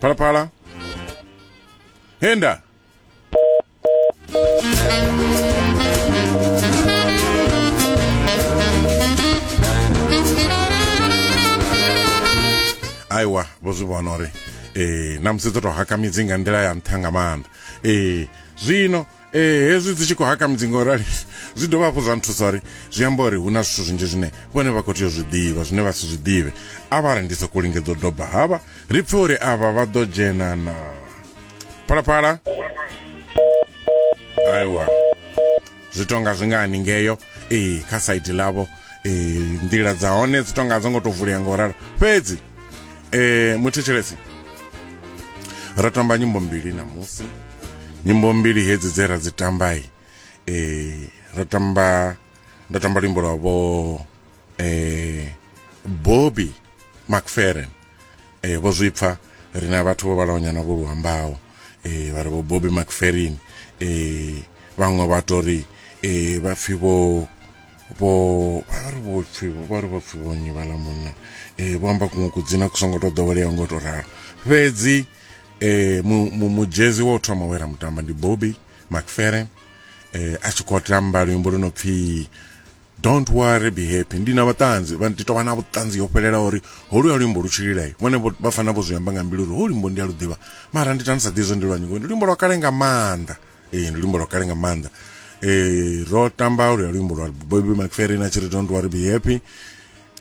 phalaphala henda aiwa vho zwi vhona uri eh na musi dzo to haka midzi nga nḓila ya nṱha nga maanḓa eh zwino ee hezwi dzi tshi khou haka mudzinga u rali zwi dovha hafhu zwa nthusa uri zwi amba uri hu na zwithu zwinzhi zwine vhone vha khou tea u zwi ḓivha zwine vha si zwi ḓivhe a vha ri ndi sokou lingedza u doba havha ri pfe uri avha vha ḓo dzhena na phalaphala aiwa zwi tonga zwi nga haningeyo ee kha saidi ḽavho ee nḓila dza hone dzi tonga dzo ngo tou vulea nga u ralo fhedzi um muthetshelesi ro tamba nyimbo mbili namusi nyimbo mbili hedzi dze ra dzi tambai e, ra tamba nda tamba luimbo lwa vho e, bobby macferen e, vho zwi pfa ri na vhathu vho vhalawanyana vho luambaho e, vha ri vho bobby macferin e, vhaṅwe vha to ri e, vha pfi vho vho vha ri vho pfi vha ri vho pfi vho nyi vhala munna e, vho amba kuṅwe kudzina ku songo to ḓoweleaho ngo to ralo fhedzi e, mu, mu, mujezi wa u thoma we ra mutamba ndi bobby macfere e, a tshi khou tamba luimbo lu no pfhi don't worry be happy ndi na vhaṱanzi vha ndi tovha na vhuṱanzi ho fhelela uri holu ya luimbo lu tshililai vhone vho- vha fana vho zwi amba nga mbilu uri holu luimbo ndi a lu ḓivha mara ndi tani sa ḓivhi zwo ndi lwa nyingo ndi luimbo lwa kale nga maanḓa ee ndi luimbo lwa kale nga maanḓa ee ro tamba olu ya luimbo lwa bobi macferin a tshi ri don't worry be happy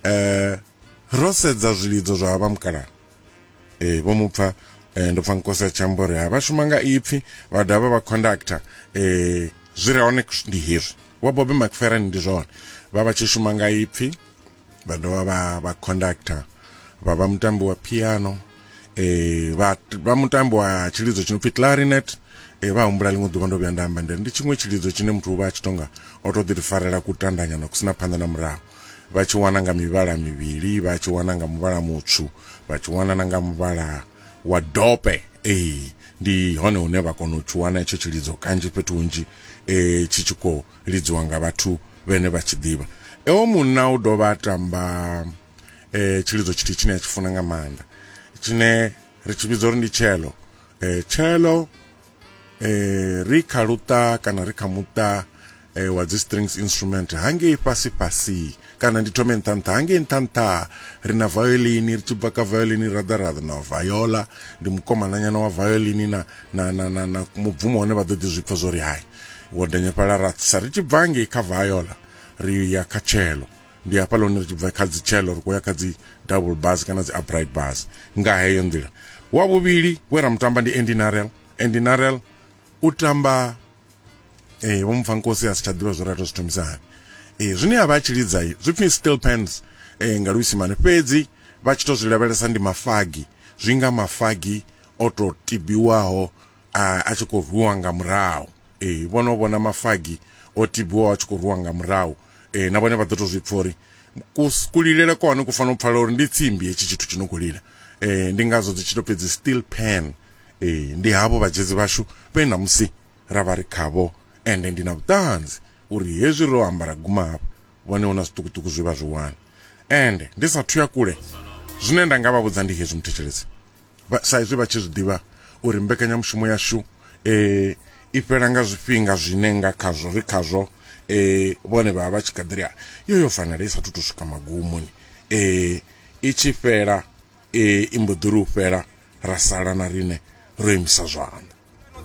eh ro sedza zwilidzo zwa vha mukalaha ee vho mu pfa eh, ndo pfa nkosi a tshi amba uri ha vha shuma nga ipfi vha dovha vha conductor eh, zwi re hone ndi hezwi wa bobe macferan ndi zwone vha vha tshi shuma nga ipfi vha dovha vha vha conductor vha vha mutambi wa piano eh, vha, vha mutambi wa tshilidzo tshi no pfi clarinet eh, vha humbula ḽiṅwe ḓuvha ndo vhuya nda amba ndi tshiṅwe tshilidzo tshine muthu u vha a tshi tonga o to ḓi ri farela kutandanyana ku sina phanḓa na murahu vha tshi wana nga mivhala mivhili vha tshi wana nga muvhala mutswu vha tshi wana na nga muvhala wa dope ee ndi hone hune vha kona u tshi wana itsho tshilidzo kanzhi fhethu hunzhi um tshi tshi khou lidziwa nga vhathu vhene vha tshi ḓivha ewo munna u dovha a tamba um tshilidzo tshithihi tshine a tshi funa nga maanḓa tshine ri tshi vhidza uri ndi tshelo um tshelo eh ri kha luṱa kana ri kha muṱa eh, wa dzi strings instrument hangei fhasi fhasi kana ndi thome nṱha nṱha hangei nṱha nṱha ri na violin ri tshi bva kha violin ra ḓa ra ḓa na viola ndi mukomananyana wa violin na na na na, na mubvumo hone vha ḓo ḓi zwipfa zwo ri hai wo denyefhala ra sa ri tshi bva hangei kha viola ri ya kha cello ndi hafha lone ri tshi bva kha dzitshelo ri khou ya kha dzi double bus kana dzi upright bus nga heyo nḓila wa vhuvhili we ra mutamba ndi andy narel andy narel u tamba eh vho mupfa nkosi a si tsha ḓivha zwo rato zwi thomisa hani eh zwine a vha a tshi lidza zwi pfhi still pens eh nga luisimane fhedzi vha tshi to zwi lavhelesa ndi mafagi zwi nga mafagi o to tibiwaho a tshi khou rwiwa nga murahu eh vhono vhona mafagi o tibiwaho a tshi khou rwiwa nga murahu e, na vhone vha ḓo to zwi pfha uri kulilele kwa hone ku fanela u pfala uri ndi tsimbi hetshi tshithu tshi no khou lila e, ndi ngazwo dzi tshi to fhedzi still pen e, ndi havho vhadzhedzi vhashu vhe namusi ra vha ri khavho ende ndi na vhuṱanzi uri hezwi ro ambara guma hafha vhone hu na zwiṱukuṱuku zwi vha zwi wane ende ndi sa thuya kule zwine nda nga vha vhudza ndi hezwi muthetshelesi sa izwi vha tshi zwi ḓivha uri mbekanyamushumo yashu i fhela nga zwifhinga zwine nga khazwo ri khazwo vhone vha vha vha tshi kha ḓi ri yo yo fanela i sathu to swika magumoni i tshi fhela i mbo ḓi ri u fhela ra sala na riṋe ro imisa zwanḓa